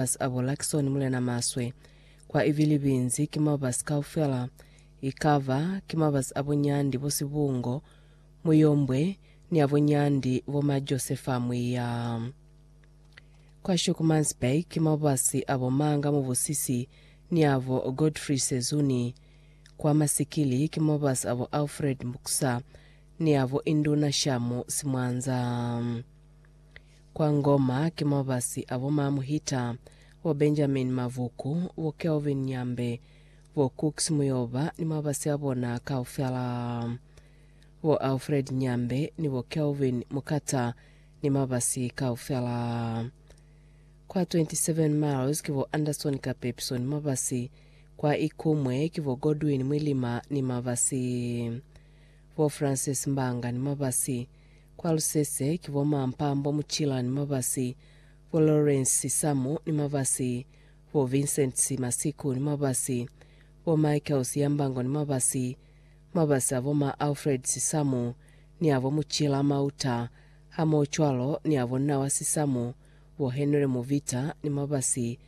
mabasi abo Luckson Mulena Maswe. Kwa Ivilibinzi ki mabasi kaufela, ikaba ki mabasi abo Nyandi bo Sibungo, Muyombwe, ni abo Nyandi bo ma Josefa Mwiya. Kwa Schoeckmansburg ki mabasi abo Manga Mubusisi ni abo Godfrey Sezuni. Kwa Masikili ki mabasi abo Alfred Muksa ni abo Induna Shamu Simwanza. Kwa Ngoma ki mo ba si a bo Ma Muhita, bo Benjamin Mavuku, bo Kelvin Nyambe, bo Cooks Muyoba ni mabasi a bona kaufela, bo Alfred Nyambe ni bo Kelvin Mukata ni mabasi kaufela. Kwa 27 Miles ki bo Anderson Kapepiso ni mabasi, kwa Ikumwe ki bo Godwin Mwilima ni mabasi, bo Francis Mbanga ni mabasi, Kwa lusese ki bo ma Mpambo Muchila ni Mabasi, bo Lawrence Samu ni Mabasi, bo Vincent Masiku ni Mabasi, bo Michael Siyambango ni Mabasi. Mabasi a bo ma Alfred Sisamu ni a bo Muchila Mauta hamohocwalo ni a bo Nawa Sisamu, bo Henry Muvita ni Mabasi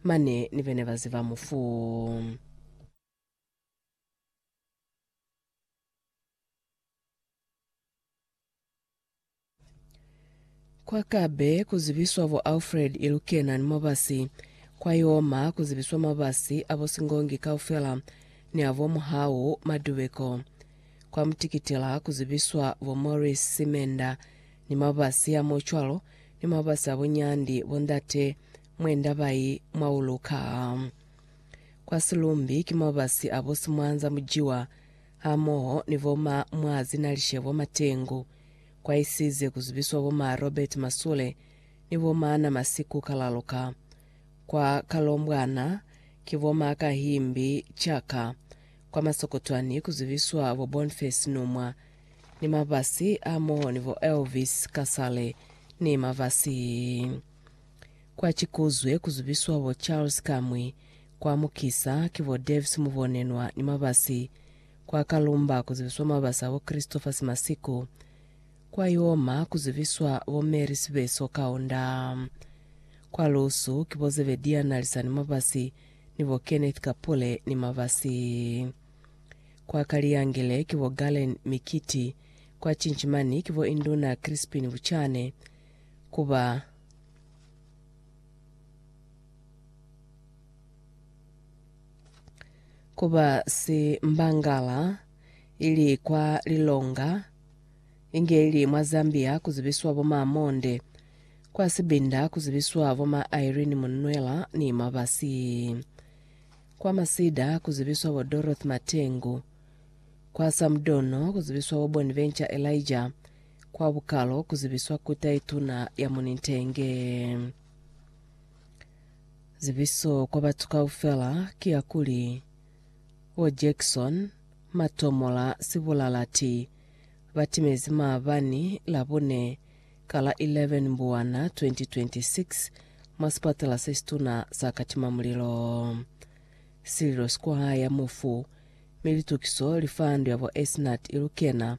mane ni bene ba ziba mufu. Kwa Kabe ku zibiswa bo Alfred Ilukena ni mabasi, kwa Yoma ku zibiswa mabasi a bo Singongi kaufela ni a bo Muhau Madubeko. Kwa Mutikitila ku zibiswa bo Maurice Simenda ni mabasi a mo cwalo ni mabasi a bo Nyandi bo Ndate Mwenda bai mwa uluka. Kwa Silumbi ki mabasi a bo Simwanza Mujiwa hamoho ni bo ma Mwazinalishebo Matengu, kwaisize ku zibiswa bo ma Robert Masule ni bo ma Namasiku Kalaluka. Kwa Kalombwana ki bo ma Kahimbi Chaka, kwa Masokotwani ku zibiswa bo Bonface Numwa ni Mavasi hamoho ni bo Elvis Kasale ni Mavasi. Kwa Chikuzwe ku zubiswa bo Charles Kamwi, kwa Mukisa ki bo Davis Mubonenwa ni Mabasi, kwa Kalumba ku zibiswa Mabasi abo Christopher Simasiku, kwa Ioma ku zubiswa bo Mary Sibeso Kaunda, kwa Lusu ki bo Zebedia Nalisani Mabasi ni bo Kenneth Kapule ni Mabasi, kwa Kaliyangele ki bo Galen Mikiti, kwa Chinchimani ki bo Induna Crispin Buchane, ku ba. Ku ba si mbangala, ili kwa lilonga, inge ili mwa Zambia ku zibiswa bo ma Monde, kwa Sibinda ku zibiswa bo ma Irene Munwela ni Mabasi, kwa Masida ku zibiswa bo Dorothy Matengu, kwa Samdono ku zibiswa bo Bonventure Elijah, Kwa bukalo, ku zibiswa ku tai tuna ya mu nitenge. Zibiso kwa batu kaufela ki ya kuli, Bo Jackson, Matomola, Sibulalati, ba timezi maabani Labone ka la 11 Mbuwana 2026 mwa sipatela se situna sa Katimamulilo. Sililo si kwa haya mufu, mi litukiso li fa ndu ya bo Esnat i lukena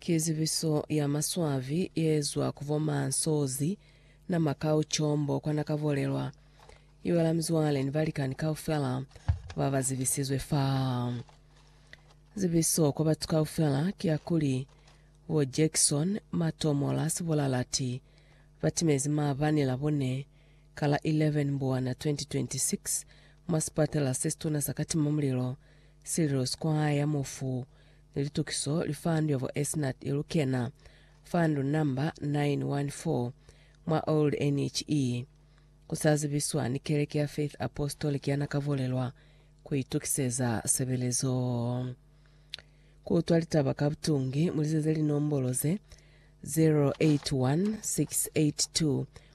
Ki zibiso ya maswabi yeezwa ku bo Mansozzi na Makau Chombo kwa nakabolelwa. Ibala mizwale ni balikani kaufela ba ba zibisizwe fa. Zibiso kwa batu kaufela ki ya kuli, bo Jackson Matomola Sibolalati batimezi maabani la bone Ka la 11 Mbwana 2026, mwa sipatala se situna sa Katimamulilo, sililo si kwahaya mufu ni litukiso li fandu ya vo Esnat Elukena, fandu namba 914, mwa Old NHE. Ku sa zibiswa ni keleke ya Faith Apostolic ya Nakavolelwa ku itukiseza sebelezo. Ku utwa litaba ka butungi, mu lizeze linombolo ze, 081 682